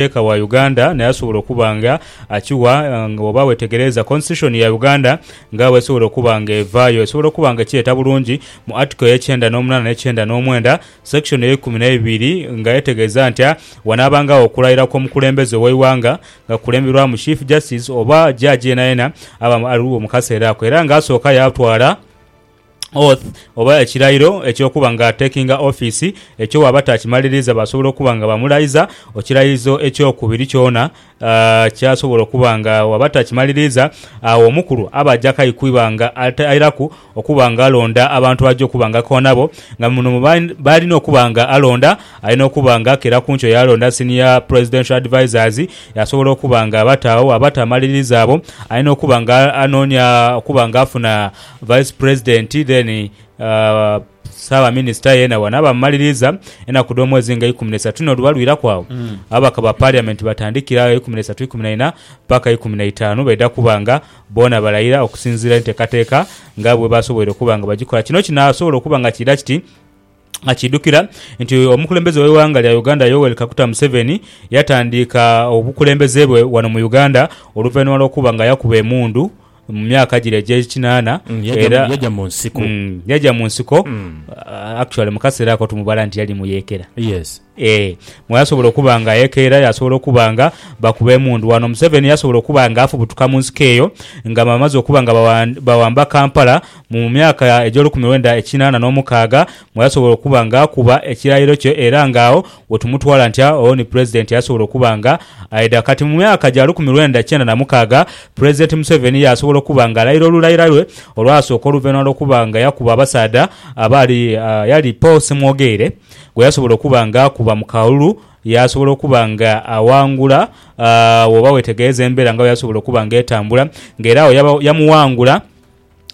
Muteeka wa Uganda naye asobola okuba nga akiwa nga bwoba wetegereeza Constitution ya Uganda nga bwesobola okuba nga evaayo, esobola okuba nga ekireeta bulungi mu Article ey'ekyenda n'omunaana n'ekyenda n'omwenda, Section ey'eikumi n'eibiri nga etegeeza nti wanaabangagho okulayira kw'omukulembeze ow'eighanga nga kukulemberwamu Chief Justice oba Judge yenayena aba aliwo mu kaseera ako era nga asooka yaatwala oath, oba ekirairo eky'okuba nga atekinga ofiisi, ekyo bw'aba taakimaliriiza baasobola okuba nga bamulaiza. Ekirairizo eky'okubiri kyona kyasobola okuba nga bw'aba taakimaliriiza, agho omukulu aba aja kaikwiba nga airaku okuba nga alonda abantu aja okuba nga akoa nabo. Nga muno mu baalina okuba nga alonda, alina okuba nga akera ku nkyo yaalonda Senior Presidential Advisers, yaasobola okuba nga abataagho. Bw'aba taamaliriiza abo, alina okuba nga anoonia okuba nga afuna Vice President then saaba minister yena wano aba mumaliriza enaku dhomwezi nga ikumi nesatu no luba lwiraku agho ababaka ba parliament batandikira agho ikumi nesatu ikumi naina paka ikumi naitanu baidha kuba nga boona balayira okusinzira entekateka nga bwebasoboire okuba nga bagikola kino kinasobola okuba nga kiidha kiti Akiidhukira nti omukulembeze w'eighanga lya Uganda Yoweri Kaguta Museveni yatandiika obukulembeze bwe wano mu Uganda oluvainhuma lw'okuba nga yakuba emundhu mu myaka gire egy'ekinaana era yaja mu nsiko actually mu kaseera ako tumubala nti yali mu yeekera. Ee, mwe asobola okuba nga ayekeera, yasobola okuba nga bakuba emundu wano. Museveni yasobola okuba nga afubutuka mu nsiko eyo nga bamaze okuba nga bawamba Kampala mu mu myaka egy'olukumi lwenda ekinaana n'omukaaga mwe yasobola okuba nga akuba ekirayiro kye era nga agho we tumutwala nti agho ni Pulezidenti yasobola okuba nga aidha. Kati mu myaka gya lukumi lwenda kyenda na mukaaga, Pulezidenti Museveni yasobola okuba nga alayira olulayira lwe olwasooka oluvainhuma lw'okuba nga yakuba abasaadha abaali yali Paul Ssemwogeire, gwe yasobola okuba nga akuba mu kalulu, yaasobola okuba nga aghangula woba wetegereza embera nga bweyasobola okuba nga etambula nga era agho yamughangula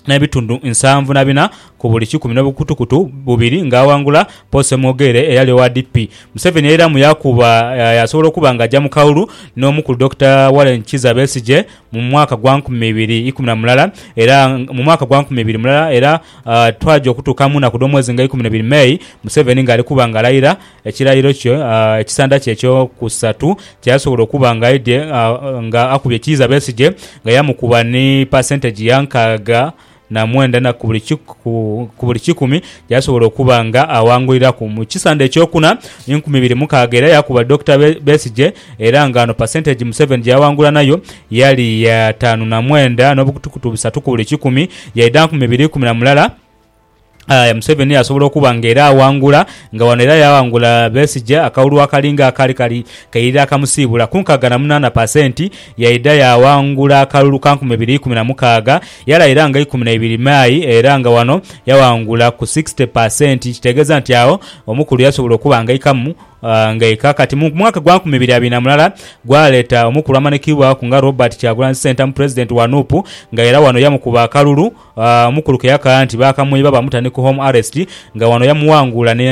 n'ebitundu nsanvu na bina ku buli kikumi n'obukutukutu bubiri nga aghangula Paul Ssemwogerere eyali owa DP. Museveni yairamu yaakuba yaasobola okuba nga aja mu kalulu n'omukulu Dokita Warren Kizza Besigye mu mwaka gwa nkumi ibiri ikumi na mulala era mu mwaka gwa nkumi ibiri mulala era Twaja okutuuka mu naku dh'omwezi nga ikuminebiri May, Museveni ng'ali kuba nga alayira ekirayiro kye ekisanda kye eky'okusatu kyeyasobola okuba nga aidhye nga akubye Kiiza Besigye nga yamukuba ni pasenteji ya nkaaga na mwenda ku buli kikumi gyeyasobola okuba nga awanguliraku. Mu kisanda ekyokuna, enkumi ibiri mukaaga era yakuba Dokita Besigye Era nga ghano percentage Museveni gyeyawangula nayo yali ya taanu na mwenda n'obukutukutu busatu ku buli kikumi, yaidha nkumi ibiri ikumi na mulala, aye Museveni yasobola okuba nga era awangula, nga ghano era yawangula Besigye akalulu akalinga akaali kali kaidha kamusiibula ku nkaaga na munaana percent, yaidha yawangula akalulu ka nkumi ibiri ikumi na mukaaga, yalayira nga ikumi na ibiri May era nga ghano yawangula ku sixty percent, kitegeeza nti agho omukulu yasobola okuba nga aikamu. Ng'aye kaakati mu mwaka gwa nkumi ibiri abiri na mulala gwaleeta omukulu amanikibwaku nga Robert Kyagulanyi Ssentamu Pulezidenti wa nup nga era wano yamukuba akalulu omukulu ke yakaaya nti baakamwiba bamuta ni ku Home Arrest nga wano yamuwangula ni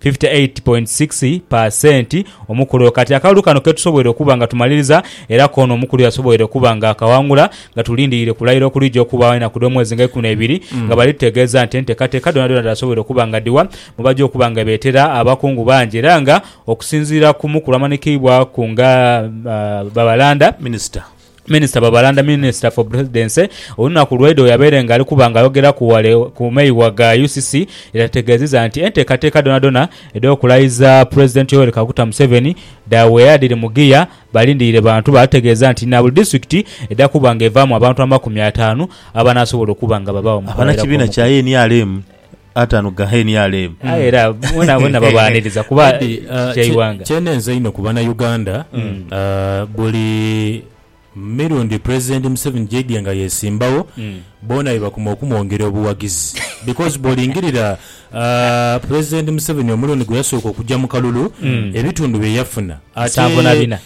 fifty eight point six pa senti omukulu oyo. Kati akalulu kano ketusoboire okuba nga tumaliriza era koono omukulu yasoboire okuba nga akawangula nga tulindiire kulayira okulija okubaawo enaku dh'omwezi nga ikumi na ibiri nga bali tutegeeza nti enteekateeka dhoonadhoona dhaasoboire okuba nga dhiwa mwebaja okuba nga beetera abakungu bangi era nga okusinziira ku mukulu amanhikiibwaku nga Babalanda, Minister. Minister Babalanda, Minister for Presidency, olunaku lwaidha bweyabaire nga alikuba nga ayogeraku ghale ku meigha ga UCC yategeezeza nti enteekateeka dhonadhona edh'okulayiza President Yoweri Kaguta Museveni dhaweera dhiri mu ggiya balindiire bantu baategeeza nti na buli disitulikiti edha kuba nga evaamu abantu amakumi ataanu abanaasobola okuba nga babaagho mu kugheraku omukono. Abanakibiina kya nrm. atanu ga nrm. Aye era boonaboona babaaniriza kuba Eddy, ah, kya kye- ighanga. kyenenze einho ku banauganda ah, buli mirundi president museveni gyaidye nga yesimbawo boona bebakuma okumwongera obuwagizi because bwolingirira ah, president museveni omulundi gweyasooka okugya mu kalulu ebitundu byeyafuna Nsanvu na bina.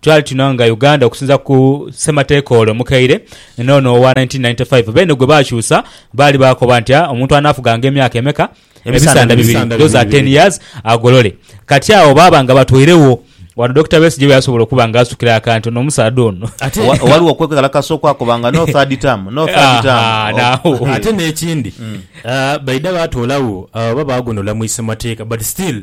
Twali tuno nga Uganda okusinza ku ssemateeka ole omukaire n'ono owa 1995. Beene gwe baakyusa baali baakoba nti omuntu anaafuganga emyaka emeka? Ebisanda bibiri, those are ten years, agolole. Kati agho baaba nga batweiregho. Wano Dokita Besigye we yasobola okuba nga asukira akantu n'omusaadha ono. Ate, Wa- Waliwo okwekalakasa okwakoba nga no third term, no third Aha, term. naagho. Oh. ate n'ekindi ah, baidha baatoolagho ah, oba baagondola mu isemateeka but still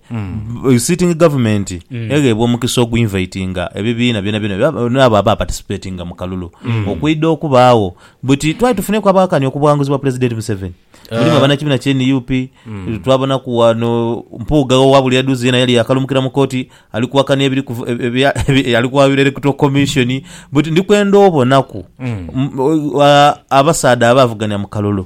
Yu sitting government egheebwa omukisa ogwinvaitinga ebibiina byonabyona bya- n'abo aba participatinga mu kalulu okwidha okubaagho. Buti twali tufuneeku abakani okubwanguzibwa Pulezidenti Museveni. Mulimu abanakibiina kya nup, twabonaku wano Mpuuga owa buli adhuze yena yali yaakalumukira mu kooti ali kuwakania ebiri kuv- ebya- ebi- ali kwayula Electoral Commission. Buti ndi kwenda obonaku m- a- abasaadha abaavugania mu kalulu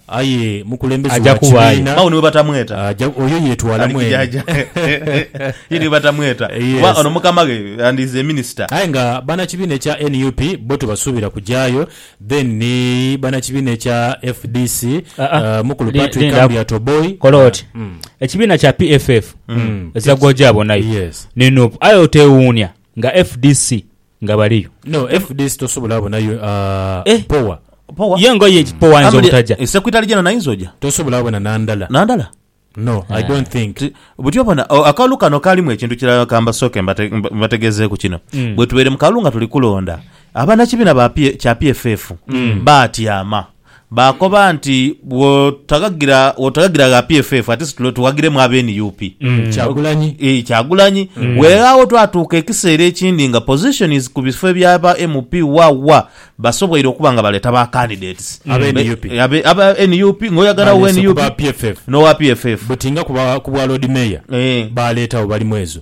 Aye mukulembeze Aja wa kubaayo. kibiina. Agho ni bwebatamweta. Aja, oyo yeetwala Ali mwene. kijaaja. Ye ni bwebatamweta. Kuba Yes. ono mukama ghe yandiize minisita. Aye nga banakibiina ekya nup bo tebasuubira kujaayo, then ni banakibiina ekya fdc, Ah, ah. eh, mukulu Li- Patrick lindaku. Amuriat Oboi. Kola oti. Mm. Ekibiina kya PFF ezira gw'oja abonayo Yes. ni nup aye oteewuunya nga fdc nga baliyo. No fdc tosobola bonayo a power. Power. Ye ngoye ki power ayinza obutaja. E secretary general naye ayinza oja. Tosobola bona nandala. Nandala. No i don't think. Buti obona akalulu kano kalimu ekintu kirala kambasooke mbategezeeku kino. Bwetubeire mu kalulu nga tuli kulonda, abanakibina kya PFF batyama. Baakoba nti, Bw'otaghagira bw'otaghagira gha PFF ate situle tughaghiremu abe nup. Kyagulanyi. Ii, Kyagulanyi. Weeghagho twatuuka ekiseera ekindi nga positions ku bifo eby'aba MP wa wa basoboire okuba nga baleeta ba candidates. Abe Be- nup. abe- Aba nup ng'oyagala owe Baleese ku nup ba PFF. n'owa PFF. Buti nga ku ba- ku bwa Lord Mayor Eh. baaleetagho bali mwezo.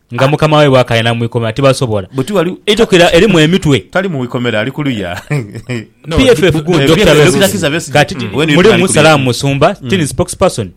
Nga mukama waibwe akaaya na mu ikomera tibasobola. Buti wali. Eitukira erimu emitwe. Tali mu ikomera ali kuluya. PFF gundi Dokita Besigye kati mulimu Salaam Musumba, sitting spokesperson,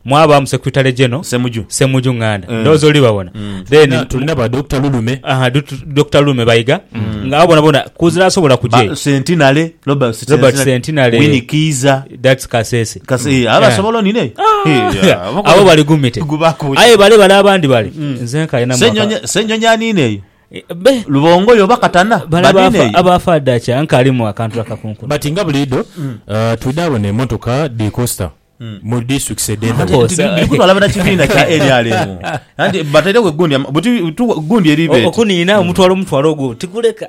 mwabaamu Secretary General Ssemuju Nganda. Ndowooza oli babona. Then. Tulina ba Dokita Lulume. Aha Dokita Lulume Bayiga nga abo bona bona kuzira asobola kugya eyo. Ba Centenary, Robert Centenary, Winnie Kiiza. That's Kasese. Kasi eh, aba Eh. sobola onine. Ah, abo bali gumite. Gubakunya. Aye bale bale abandi bale. Nze nkalina mwaka. Senyonyi senyonyi anine eyo. Eh, Be. Lubongo yo bakatana. Bale Banine abafa eyo. abafa dacha nkalimu akantu akakunkuna. But nga buliidho uh, twidhaabona emotoka dhi costa mu districts edh'endhaghulo. Course. Nti biri kutwala bana kibiina kya NRM. Anti batairewo egundi ama- buti- tu- gundi eribeeti. Okuniina omutwalo omutwalo ogwo tikuleka.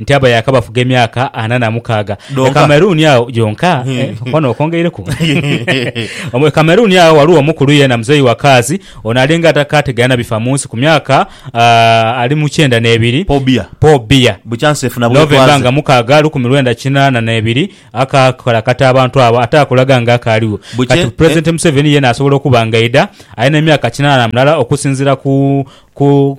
Nti abo yaakabafuga emyaka ana na mukaaga. E Donka. Cameroon agho gyonka eh, okwano okwongeireku. Omu- E Cameroon agho ghaligho omukulu yeena muzeeyi wa kaazi, ono alinga atakaategeera na bifa mu nsi ku myaka ah, ali mu kyenda n'ebiri. Paul Biya. Paul Biya. Bukya nsi efuna November nga bwetwaze. mukaaga lukumi lwenda kinaana n'ebiri akaakalakata abantu abo ate akulaga nga akaaliwo. Bukye- Kati eh. Pulezidenti Museveni yeena asobola okuba ng'aidha alina emyaka kinaana na mulala okusinziira ku ku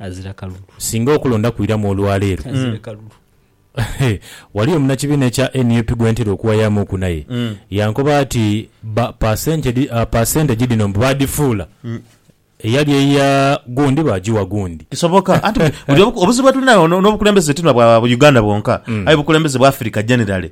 azira kalulu. Singa okulonda kwiramu olwa leero, waliyo munnakibiina ekya nup gwe ntera okuwayaamuuku naye yankoba ati bba paasentegi dhino mbu baadhifuula eyali eya gundi baagigha gundi. Kisoboka. Anti buli obuzibu bwe tuli nabwo n'obukulembeze ti na bwa Uganda bwonka aye bukulembeze bwa Africa generally.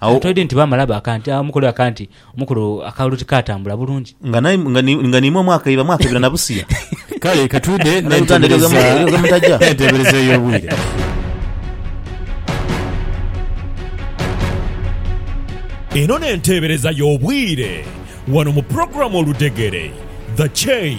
Agho twidhi nti baamala baaka nti, aah, omukulu aka nti, omukulu akalulu tikaatambula bulungi. Nga nae, nga ni, nga ni imwe mwakaiba, mwakaibira na busiya. Kale ka twidhe Banauganda egyo n'entebereza, ghe mu- egyo ghe mutaja. n'entebereza ey'obwire. Eno n'enteebereza y'obwire wano mu pulogulaamu Oludhegere, The Chain.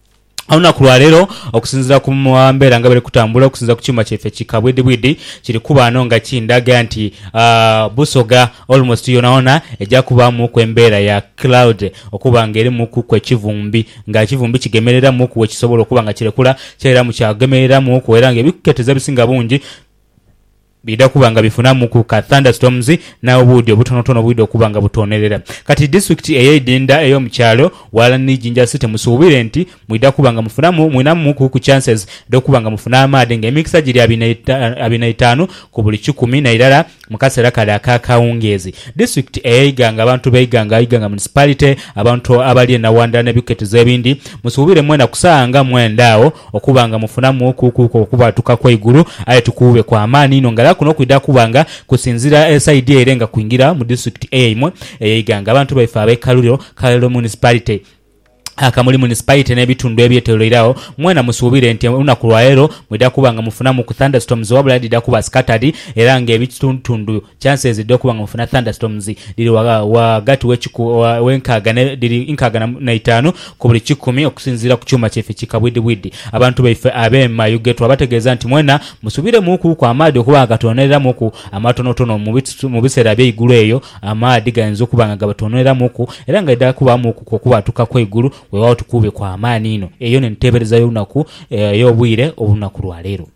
Olunaku lwa leero okusinziira ku mbeera nga bweri kutambula okusinziira ku kyuma kyaife ki kabwidhibwidhi kiri kuba ghano nga kindhaga nti Busoga almost yonayona eja kubaamuku embeera ya cloud okuba nga erimukuku ekivumbi nga ekivumbi kigemereramuku we kisobola okuba nga kirekula kyairamu kyagemereramuku era nga ebikuketeza ebisinga bungi Bidha kuba nga bifunamuku ka thunderstorms na obuudhi obutonotono obwidha okuba nga butoonerera. Kati disitulikiti eyeidinda eyo mukyalo walani ni Jinja City musuubire nti mwidha kuba nga mufunamu mwinamuku ku chances dhokuba nga mufuna amaadhi nga emikisa giri abiri na itaanu ku buli kikumi nairala mukasera kale aka kawungeezi. Disitulikiti eye Iganga abantu be Iganga Iganga municipality abantu abali e Nawandha ne biketizo ebindi musuubire mwena ku saawa nga mwenda agho Okuba nga mufunamuuku kuuku okubwatuka kw'eigulu, aye tukuube kwa maani inho ng'ala kuno kwidha kuba nga kusinziira e saidi ere nga kwingira mu disitulikiti eyaimwe eye Iganga. Abantu baife ab'e Kaluliro, Kaliro Municipality, Kamuli Municipality n'ebitundu ebyetoloire agho mwena musuubire nti olunaku lwa leero mwidha kuba nga mufunamuuku thunderstorms wabula dhidha kuba scattered era ng'ebitundutundu Chances dho kuba nga mufuna thunderstorms dhiri wa wa ghati we nkaaga ne dhiri nkaaga na itaanu ku buli kikumi okusinziira ku kyuuma kyaife ki kabwidhibwidhi. Abantu baife abe Mayuge twabategeeza nti mwena musubire mu ku ku amaadhi okuba nga gatwononera mu ku amatonotono mu mu biseera ebye igulu eyo amaadhi gayinza okuba nga gabatwononera mu ku era nga idha kuba mu ku kwo kubwatuka kwe igulu wewaawo tukuube kwa maani inho. Eyo ne nteebereza yo lunaku eyo bwire olunaku lwa leero.